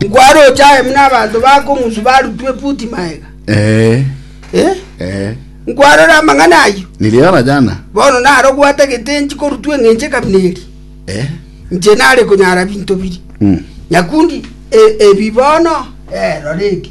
Nkwaroche aye buna abanto bakong'usu barutwa efuti magega. Eh, Eh? eh. Nkwarora amang'ana ayio? Niliona jana. Bono naro gwatagete enchi korutwa eng'enche ekabina eri. Eh. Inche nare konyara binto biri. Mm. Nyakundi e- ebi bono eh, rora eke.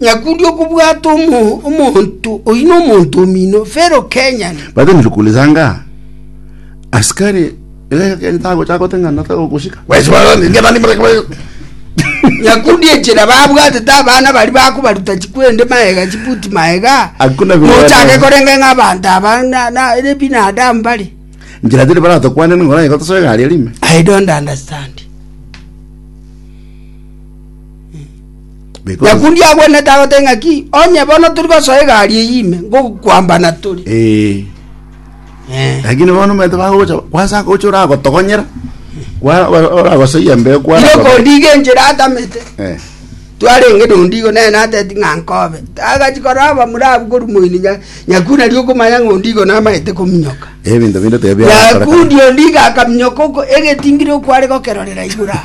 Nyakundi okobwata omo- omonto oyi nomonto omino Fero Kenyan. Batenire kuuliza ng'a, Asikari egeka keri tagocha goteng'ana tagokosika? Nyakundi enchera babwatete abana baria bakobaruta chikwende maega chibuti maega Hakuna vile mochake wanaweza. korenga ng'a abanto aba na- na- ere binadamu bare Njira tiri baratokwane ning'ora igo tosoe egari erime. I don't understand. Because- Nyakundi agwenete agote ng'aki onye bono tiri gosoa egari eyio ime ngokwambana tore Eh, Eh. lakini bono omanyete bagocha gwasaka gocha oragotogonyera kwa- wa- oragosoyia mbeo kwa Ire kondiga enchera atamete Eh, twarenge nondigo naye nateti ng'a nkobe agachi korora abamura abu korumoini nya- nyakuna ri okomanya ng'a ondigo namaete kominyoka ebinto binde tebia nyakundi ondiga akaminyoka oko- egetingire okware gokerorera igura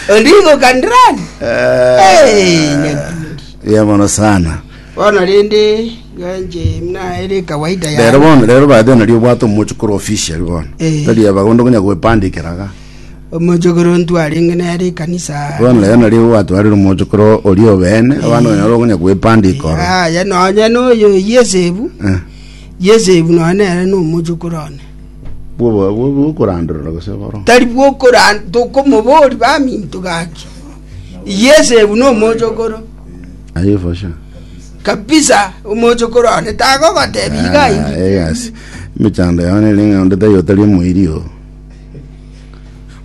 Oligo kandirani. Hey, nyakundi. Buya mono sana. Bono rende ganje mna ere kawaida rero ya. bono rero baadhi nari obwate omochi kore official bono Eh. nari abagondo konya gwepandikiraga Omojogoro ntwarenge nere ekanisa. bono rero nari gwatwarire omochi kore ori obene abana banyara konya gwepandikora Aya nonya noyo Yesebu. Eh. Yesebu nonya nere nomojogoro one. bw'obo- bwo- bw'okorandorora gose boro. tari bw'okoran tokomoboria baminto gaki yes ebu nomochokoro Aye for sure. kabisa omochokoro one tagogotebi iga Ah, iga yes. Emechando yao nere ng'a onde tari otari omoiri o.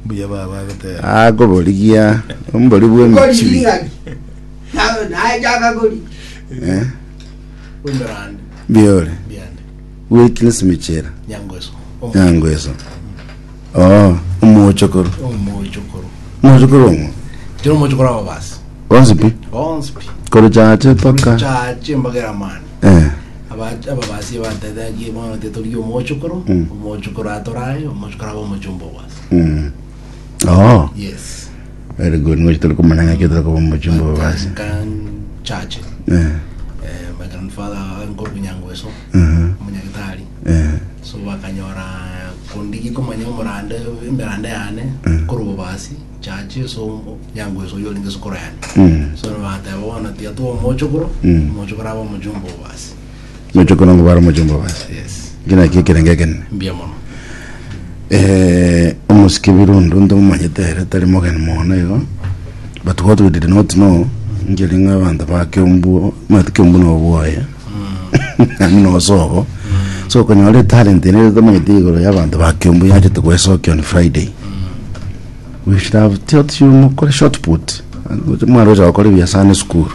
mbuya baba agoteba Akoborigia ombori kori bw'emichiri. ing'aki naye chaka kori Eh, Umberande, biore. biande. Wiki nesimechera. Nyango eso. Omo- Nyango eso. Oh, omochokoro. Omochokoro. Omochokoro omo. Chero omochokoro ababasi. Bonsi pi. Bonsi pi. Kore chache paka. Chache mpaka eramani. Eh. Aba- ababasi batetagie bono tetorie omochokoro. Mm. Omochokoro atorae, omochokoro abe omochomba obasi. Mm. Oh. Yes. Very good, ngochi tore komanya ng'aki otari koba mochi mbobe basi. chache Eh, eh, my grandfather ariko obunyangweso aha, omunyagitari eh, so bakanyora kondigi komanya omorande emerande yane Mm. kori obobasi chache so nyangweso oyo oringe esukuru yane mm, so bateba bono tiga twomochokoro Mm. omochokoro aba omojumba obobasi Noche kono ngobare omochie mbabazi. Yes. Eki naki ekerengo ekenene. Mbuya mono. Eh, omosike birundu ntomanyete ere tari mogeni mono igo but what we did not know nkeri ng'a abanto ba kiombuo mati kiombuo na obwoye nani na osogo so okonyora etalent ene tomanyete igoro ya abanto ba kiombuo yachete goesokia on friday we should have taught you mokore short put mwarocha gokora ebiasara na esukuru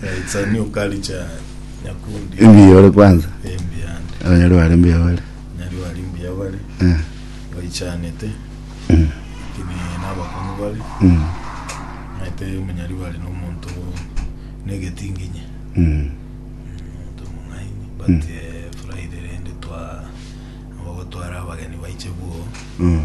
Yeah, it's a new culture nyakundi Mbuya ore kwanza. embi yande Abanyarwanda bari mbuya bare. nyari bari mbuya bari Eh. baichanete Mm. kini nabakong'u bari Mm. naete omunyari bari nomonto negetinginye Mm. omonto omong'aini but Mm. eh, friday rende twa abagotwara abageni baiche bwo Mm.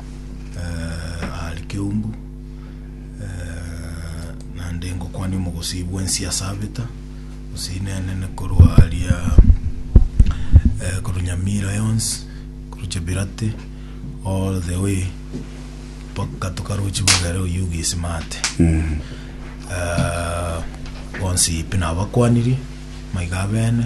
eh, aare keumbu eh, naende ngokwania omogosii bwensi ase abeta gose inenene korwa aria eh, korwa nyamira yonsi korwa chebirate all the way mpaka tokarochi bagere oyuga esimate Eh, bonsi pi nabakwanirie maiga abene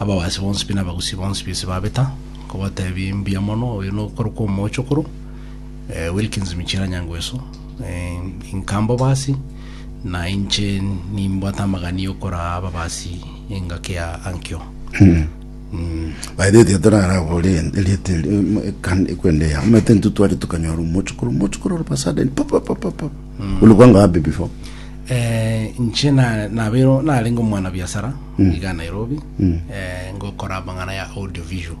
Ababaasi bonsi pi na abagusi bonsi pi ase babeta, nkobateebia mbuya mono. Oyo nokorokwa Omoochokoro, eh, Wilkins Michira Nyangweso, eh, inka mbobaasi, na inche nimbwate amagani y'okoraa ababaasi engaki ya Ankyo. By the way, tiga torarabore erieta eri, em, ekan- ekwenda eya omanyete intwe tware tukanyora omochokoro omochokoro ore pasada eri, pa, pa, pa, pa, pa. Ulikuwa ngapi before? Eh, nche na- nabeirwe narenge omwana biasara iga nairobi eh, ngokora amang'ana ya audio visual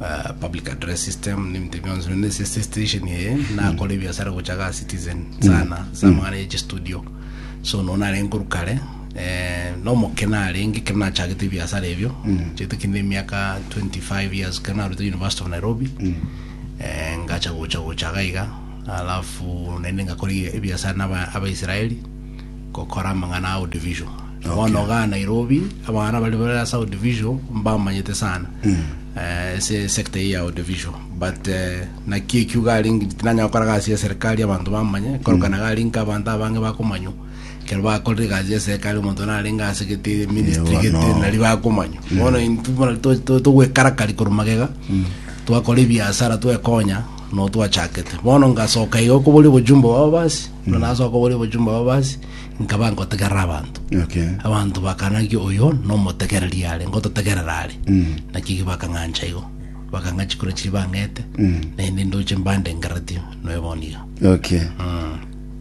eh, public address system nebinto bionsi bende ase ase station eye nakora ebiasara gocha ga citizen sana ase amang'ana ya chistudio so no narenge korwa kare eh, nomoke narenge ekero nachagete ebiasara ebio chiaete kinde emiaka 25 years ekero narutire university of nairobi eh, ngacha gocha gocha iga iga Alafu naende ngakora ebiasara na Abaisraeli gokora amang'ana a audiovisual. Okay. Bono iga Nairobi abang'ana baria bare ase audiovisual mbamanyete sana eh, ase sector eye ya audiovisual but eh, naki ekio iga ari ngi- tinanya gokora gasi ya serikali abanto bamanye korokana iga ari nka abanto abange bakomanywa kero bakorire egasi ya serikali omonto narenge ase gete ministry Ewa, gete no. nari bakomanywa bono intwe bono to- to- togwekarakari korwa magega twakora ebiasara twekonya Noo twachakete. Bono ngasoka iga okoboria obojumbe bwabo basi, buna nasoka koboria obojumbe bwabo basi, nkaba nkotegerera abanto. Okay. Abanto bakana ng'aki oyo nomotegereri are, ngototegerera are. Naki ki bakang'ancha igo. Bakang'a chikura chiria bang'ete, naende ndoche mbandengereretie noe bono iga. Okay.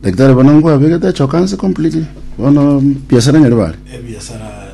Daktari bono nkwabegete achokanse completely. Bono biasara nyaribare. Ebiasara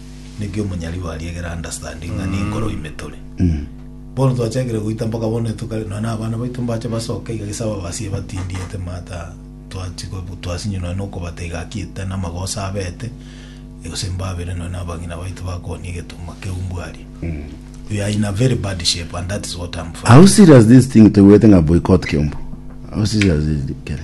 naki omonyaribo aria egere understanding ng'a nenkoro ime tore. Bono twachakire goita mpaka bono etuka ri- nonya na abana baito mbache basoke iga gese ababasi ebatindiete mata twachi ko- twasinywa nonya na okobata iga ki ete na amagoso abete gose mbabere nonya na abang'ina baito bakooni egetuma keu mbwaria. We are in a very bad shape and that is what I'm How fighting. serious this thing toigwete ng'a boycott kiombu? How serious is it kere?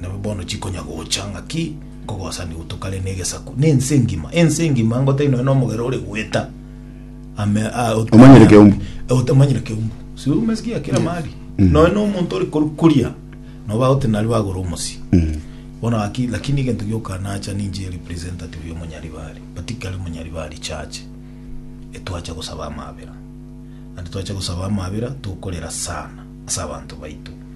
Nabo bono chikonya gocha ng'aki nkogosani gotokare negesaku, ne ense engima, ense engima ngotai nonya nomogera ore goeta ame a- ot- Omanyire keumbu. Eh, otamanyire keumbu si umesikia kila mahali nonya nomonto ore koru kuria noba gote nari bagora omosi bono aki lakini egento gioka nacha ninche representative omonyaribari but kare monyaribari church etwacha gosaba amabera and twacha gosaba amabera tokorera sana ase abanto baito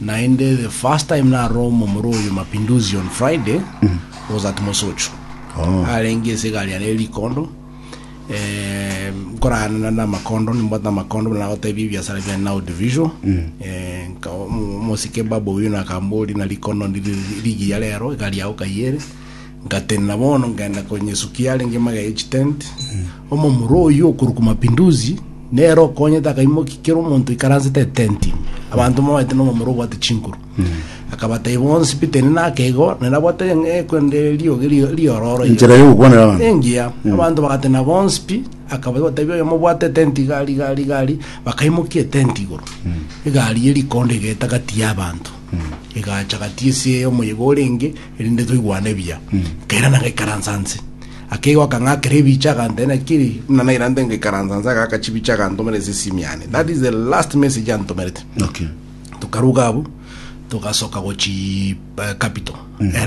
Naende the first time narora omomura oyo Mapinduzi on Friday was at Mosocho. Oh. Arenge ase egari yane eri rikondo. Eh, nkorana na makondo nimbwate amakondo buna nagotebia ebiasara bia now division. Eh, nka- omo- omosike baba oyo nakambori na rikondo ndiri ligi ya rero egari yao kayere. Ngatenena bono ngenda konya esuki yarenge magega ye chitenti. Omomura oyio okorokwa Mapinduzi nere okonyete akaimokia kera omonto oikaransete etenti ime. Abanto moete nomomura obwate chinkuru. Akabatai bonsi Peter ine nakeigo nere abwate eh, kwende rioge rio- riororo iga. Enchera y'ogokwanera abanto. engiya abanto bagatena bonsi pi akaba gotebi oyo mobwate etenti igari igari igari bakaimokia etenti igoro egari ye rikondo egaeta gati y'abanto egacha gati ase omoyega orenge erinde toigwane buya. Nkairana ngaikaransa nse. Akegoa akang'akera ebicha agantebia nakiri buna nairante ngaikaransa nse agaka chibicha agantomera ase esimi yane. That is the last message antomerete. Okay. Tokaruga abwo togasoka gochi eh, capital. Ere